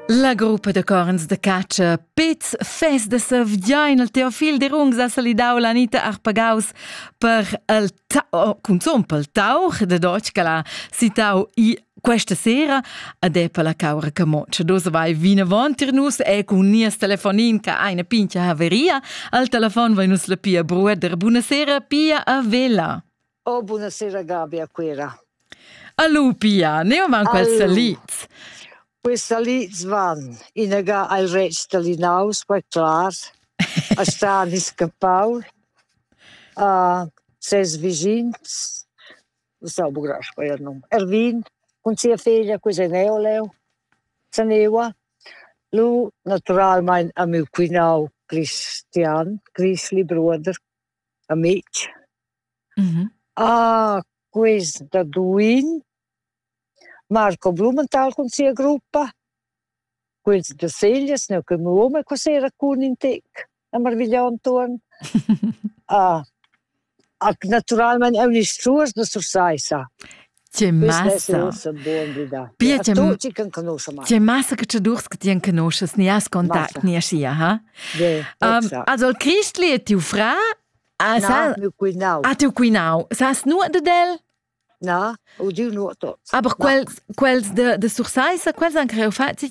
La gruppa da corns de catscha Pez Fest de Sevgiain il Teofil de Rungs ha salidau l'Anita Arpagaus per il tau, cunzun pel tauch de Deutsch che l'ha citau i questa sera ad è per la caura che moce. Dus vai vinavon tir nus e cun nies telefonin che eine pincha haveria al telefon vai nus la pia brueder. Buonasera pia a vela. Oh, buonasera Gabi a Quera. Allo Pia, ne van questa Liz? Questa Liz van inaga al rec da Linaus, per clar, a stani scappau, a ses vigins, non so bugrach poi il nome, Ervin, con sia figlia, questa neo leo, Sanewa, lu naturalmein a miu quinau Christian, Grischli, bruder, amitg. Mh-mh. Ah, quist da duin, Marco Blumenthal cun sia gruppa, quels da Seglias, neu che mio uom qua sera cun in tec a marvigliar intuorn. Ah, naturalmein eu nisch truas da Sursaissa. Ti massa. Pia ti ti massa che ti durs che ti enconuschas, ni has contact, ni aschia, ha? Also il Christli è tiu fra? Ha tiu cuinau. Sas nuot de el? Na, u diu nuot. Aber quels, quels de, de Sursaissa, quels han creu fatti,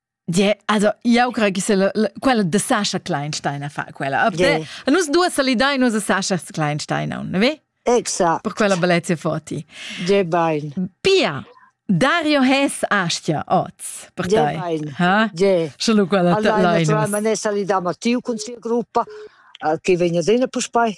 Yeah, also io creo che se quella de Sascha Kleinstein a fa quella. Yeah. Nus due salidai nus a Sascha Kleinstein, non, ve? Exact. Per quella bellezia foti. De bain. Pia, Dario Hess Astia oz per te. De bain. Ha? De. Solo quella allora, naturalmente salidamo a tiu con sia gruppa che vegna dena per spai.